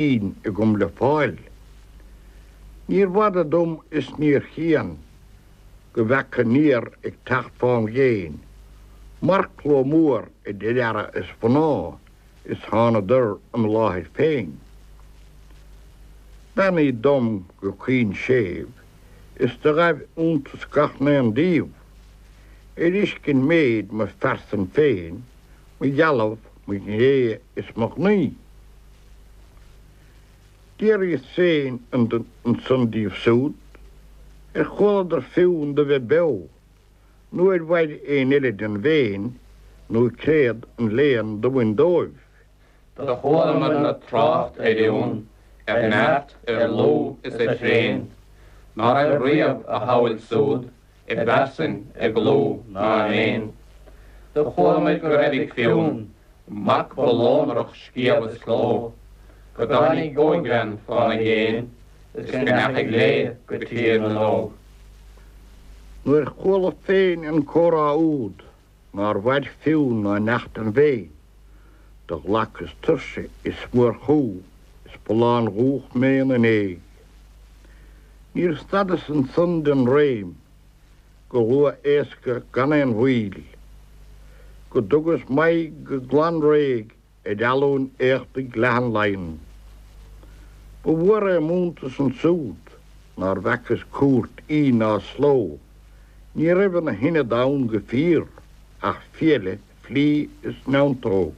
Fhinn agam le fáil. Níorbh fhada dom is níor chian go bhfeaca aniar ag teacht fám dhéin marcshlua mór idir fheara is mhná is thánadar im láthair féin. Beannaíodh dom go caoin séimh is do ghaibh iontas gach n-aon díobh ar fheiscint méid mo phearsan féin, mo dheilbh, mo ghné is mo ghnaoi. D'fhiafraíos féin ansan díobh súd, ar chualadar Fionn do bheith beo, nó ar mhair aon eile den bhFéinn, nó créad an léan do bhain dóibh. Do chualamarna trácht ar Fhionn, ar neart, ar lúth is ar thréan, ná raibh riamh a shamhail súd i bpearsain, i gclú ná i méin. Do chualamair go raibh ag Fionn mac ba lonrach scéimh is cló, go dtáinig ógbhean fána dhéin is go ndeachaigh léi go Tír na nÓg. Nuair chuala féin an comhrá úd. nár mhair Fionn ná neach den bhFéinn, do ghlacas tuirse is mórchumha is ba lándubhach mé ina ndéidh. Níor stadas ansan den réim go luath éasca gan aon mhoill, go dtugas m'aghaidh go glan réidh ar Almhain éachtaigh leathan Laighean. Ba mhór é m'iontas ansúd nár bhfacas cúirt Fhinn na sló. Ní raibh ina hionad ann go fíor ach fiaile, flí is neantóg.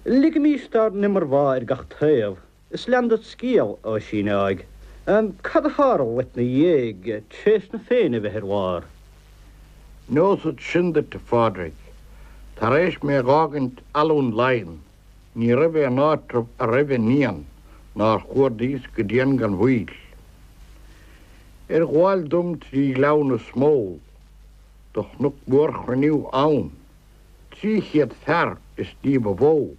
Ligimis dár n-iomarbhá ar gach taobh Is lean ded scéal, a Oisín áigh. Cad a tharla dhuit 'na dhéidh, tar éis na Féinne a bheith ar lár? Neosad sin duit, a Phádraig. Tar éis mé a dh'fhágaint Almhain Laighean, ní raibh aon áitreabh a raibh an Fhiann nár chuardaíos go dian gan mhoill. Ar ghabháil dom trí Ghleann na Smól do chonac mórchruinniú ann, Trí chéad fear is ní ba mhó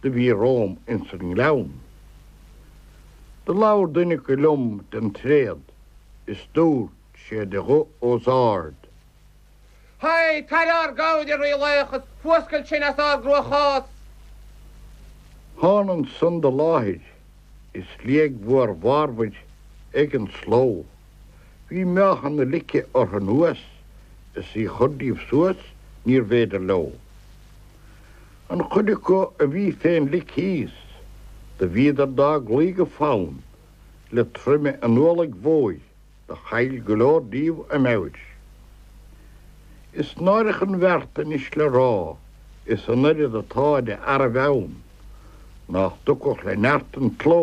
do bhí romham ins an ngleann. Do labhair duine acu liom den tréad is dúirt sé de ghuth os ard. Tar dár gcabhair, a rílaoich, is fuascail sinn as ár gcruachás! Thána ansan do láthair is liag mhór mharmair ag an slógh. Bhí meáchan na lice orthu anuas is í chur díobh suas níorbh fhéidir leo. An chuid acu a bhí fén lic thíos, do bhíodar dá gcloí go fann le troime an ualaigh mhóir, do chaill go leor díobh a meabhair. Is náireach an bheart anois le rá is an oiread atá de fhearaibh ann nách dtiocfadh le neart an tsló,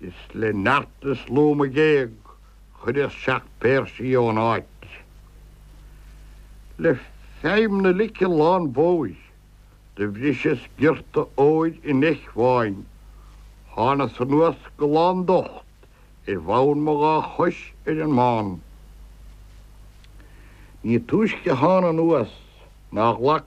Is le neart is lúth mo ghéag chuireas seacht bpéirse í ón áit. Le feidhm na lice lánmhóir do bhriseas giorta óir an eich bháin. Thánas anuas go lán docht ar bhonn mo dhá chois ar an mbán. Ní túisce thána anuas ná ghlac